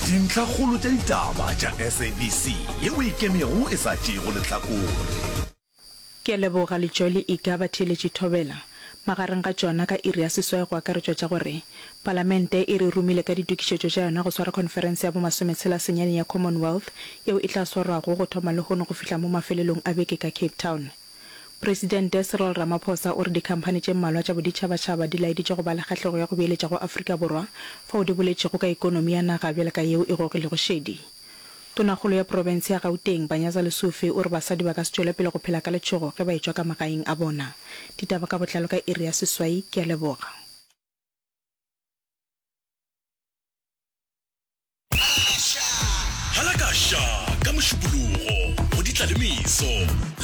Dintlhakgolo tša ditaba tša SABC ye o e kemego e sa tšeego lehlakore. Ke a leboga Letšoli Iga Batheeletši Thobela. Magareng ga tšona ka iri ya seswai go akaretšwa tša gore, Palamente e re romile ka ditokišetšo tša yona go swara khonferense ya bo masometshela senyane ya Commonwealth yeo e tla swarwago go thoma lehono go fihla mo mafelelong a beke ka Cape Town. Presidente Cyril Ramaphosa o re dikhamphani tše mmalwa tša boditšhabatšhaba di laeditše go ba le kgahlego ya go beeletša go Afrika Borwa fao di boletšego ka ekonomi ya naga bjale ka yeo e gogilego šedi. Tonakgolo ya profense ya Gauteng, Panyaza Lesufi o re basadi ba ka se tšwele pele go phela ka letšhogo ge ba etšwa ka magaeng a bona. Ditaba ka botlalo ka iri ya seswai. Ke a leboga. Hala ka ša ka Mošupologo go di tla le meso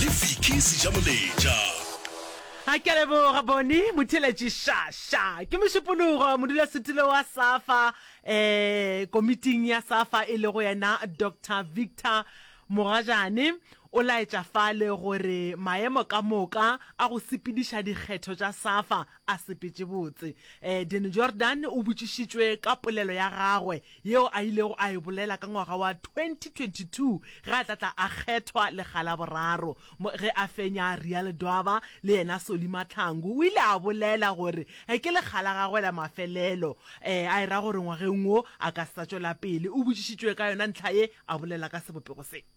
le Vicky Sejamoletša. A ke a leboga Boni Motheletši Sha Sha. Ke Mošupologo modulasetulo wa Safa um komiting ya Safa e lego yena Doctor Victor Mogajane o laetša fale gore maemo ka moka a go sepediša dikgetho tša Safa a sepetše botse. Danny Jordan o botšišitšwe ka polelo ya gagwe yeo a ilego a e bolela ka ngwaga wa 2022 ge a tla tla a kgethwa lekga la boraro. Ge a fenya, Real Dwaba le yena Solly Mahlangu o ile a bolela gore ke lekga la gagwe la mafelelo, a e ra gore ngwageng wo a ka se sa tšwela pele. O botšišitšwe ka yona ntlha ye, a bolela ka sebopego se.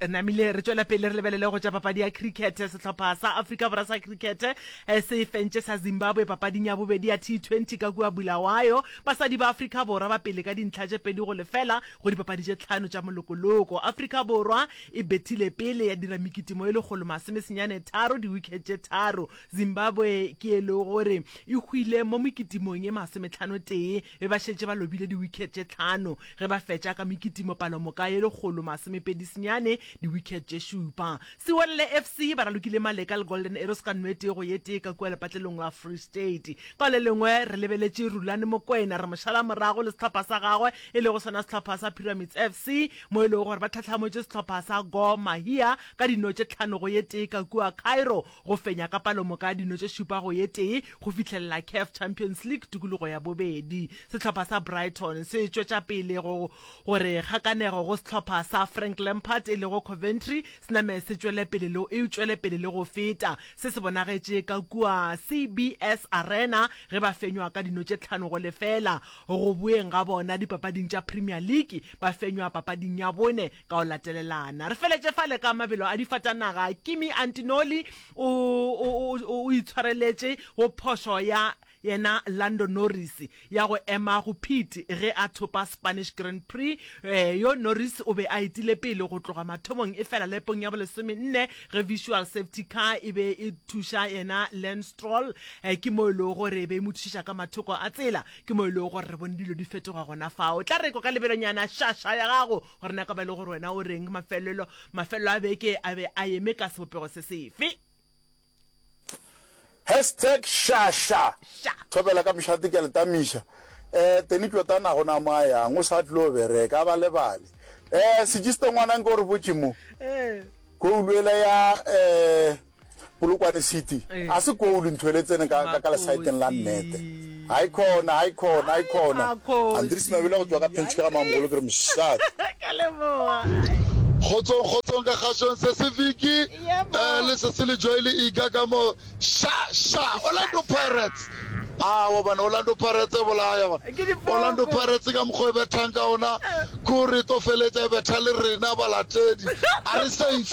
namile re tswela pele re lebelele go tša papadi ya cricket sehlopha sa africa borwa sa cricket eh, se fentše sa zimbabwe papading ya bobedi ya t20 ka kua bulawayo basadi ba africa borwa ba pele ka dintlha tše pedi go lefela go dipapadi tše tlhano tša molokoloko africa borwa e bethile pele ya dira mekitimo e lekgolo masomesenyane tharo diwicket tše tharo zimbabwe ke e le gore e hwile mo mekitimong e masometlhano tee be ba šetše ba lobile diwicket tše tlhano ge ba fetša ka mekitimo palomoka ye lekgolo masomepedi senyane, diwicket tše šupa. Sewelele FC ba ralokile Maleka le Golden Arrows ka no e tee go ye tee ka kua lepatlelong la Free State. Ka le lengwe re lebeletše Rulani Mokwena re mo šala morago le sehlopha sa gagwe e lego sona sehlopha sa Pyramids FC mo e lego gore ba tlhahlamotše sehlopha sa Gor Mahia ka dino tše tlhano go ye tee ka kua Cairo go fenya ka palomoka ya dino tše šupa go ye tee go fihlelela CAF Champions League tukulugo ya bobedi. Sehlopha sa Brighton se tšwetša pele go gore kgakanego go sehlopha sa Frank Lampard e lego Coventry se name se tšwele pele le e tšwele pele le go feta. Se se bonagetše ka kua CBS Arena ge ba fenywa ka dino tše tlhano go lefela go boeng ga bona dipapading tša Premier League, ba fenywa papading ya bone ka go latelelana. Re feletše fale ka mabelo a difatanaga. Kimi Antinoli o, o, o, o itshwareletše go phošo ya yena Lando Norris ya go ema go Pete ge a thopa Spanish Grand Prix. E, yo Norris o be a etile pele go tloga mathomong efela lepong ya bolesomenne ge visual safety car e be e thuša yena Lance Stroll, e, ke mo e lego gore e be e mo thušiša ka mathoko a tsela. Ke mo e lego gore re bone dilo di fetoga gona fao. O tla rekwa ka lebelonyana šaša ya gago gore na ka ba e le gore wena o reng mafelelo mafelelo a beke a be a eme ka sebopego se sefe. Hashtag Šaša Sha. Thobela ka mšate ke a le tamiša eh Teni Tlotana go na mo a yang o sa tlo bereka a ba lebale eh Sejiste ngwana nke o re botše mo Eh. Koulu ela ya eh Polokwane City a se koulu ntho ele tsene ka ka ka lesaeteng la nnete hai khona hai khona hai khona Andris Mabele go tswa ka Pinch ka ga mamogolo ke re mshat ka leboga Kgotsong kgotsong ka kgashong se se Vicky eh, le se se le Joy le Iga ka mo sha sha Orlando Pirates awa bana Orlando Pirates e bolaya ba Orlando Pirates ka mokgwa e bethang ka ona kuri to feletsa e betha le rena balatedi a re safe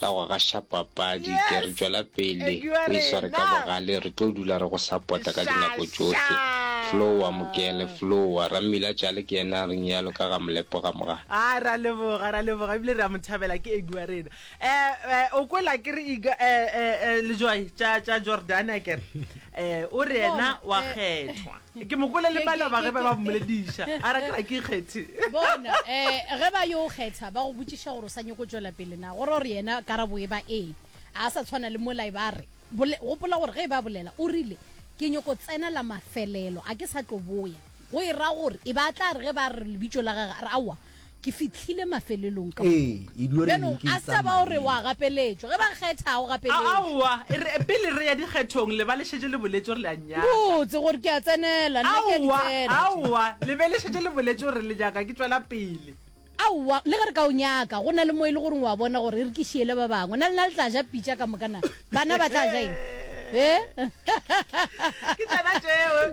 Ka go gaša papadi, ke re tšwela pele o e sware ka bogale, re tlo dula re go sapota ka dinako tšohle. Flowa, Mokele, Flowa. Rammila Tšale ke yena a reng yalo ka ga Molepo ga moga. A ra leboga, ra leboga ebile re a mo thabela, ke Edu wa rena. Eh, eh, o kwela ke re Iga, eh, eh, eh, Lejwai tša, tša Jordane akere? Eh, o re yena wa kgethwa. Ke mo kwele le malaba ge ba ba mmolediša, a re, Ka ke kgethe. Bona, um ge ba yo o kgetha, ba go botšiša gore o sa nyoko tšwela pele na. Go ra gore yena karabo e ba ee. A sa tshwana le mola e ba a re, Bole, gopola gore ge e ba bolela, o rile, Ke nyoko tsena la mafelelo, a ke sa tlo boya. Go e ra gore e ba a tla re ge ba re lebitšo la gage, a re, Aowa, Ke fihlile mafelelong ka Ee, moka. e dua re Bjalo, leke a se tsa ba o re wa maemo. gapeletšwa. Ge ba kgetha, ga o A- gapeletšwe. Aowa, e re, pele re ya dikgethong, le ba le šetše le boletše gore le a nnyaka. Botse gore ke a tsenela, nna ke a di Aowa, tsena tše. aowa, le be le šetše le boletše gore le nyaka ke tšwela pele. Aowa, le ge re ka o nyaka, go na le mo e le goreng o a bona gore e re ke šiele ba bangwe. Na lena le tla ja pitša ka moka na? Bana ba tla ja eng? He? Ke tsena tšeo.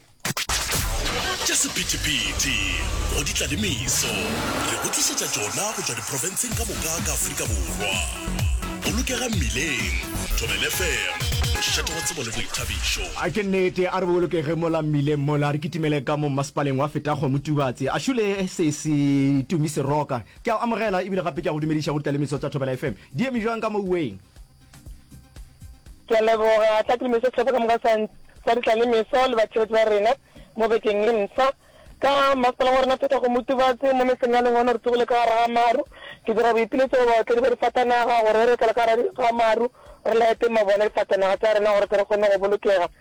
Tša sephethephethe go di tla le meso re go tlišetša tšona go tšwa diprofenseng ka moka ka Afrika Borwa. Bolokega mmileng, Thobel FM, mošate wa tsebo le boithabišo. A ke nnete, a re bolokege mola mmileng mola, re kitimele ka mo mmasepaleng wa Fetago Motubatse. A šule sesi Tumi Seroka, ke a o amogela ebile gape ke a go dumediša go di tla le meso tša Thobela FM. Di eme bjang ka moweng? ke a leboga tla ke le meso setlhopha ka moka sa sa ditla le meso le batšhebetsi ba rena mo bekeng e ntswa ka masepala wa rena pheta go motubatse mo metseng ya lengwano re tsogile ka gara ga maru ke dira boipiletso go baotledi ba difatanaga gore re etela ka gara ga maru re laete mabone difatanaga tsa rena gore tle re kgone go bolokega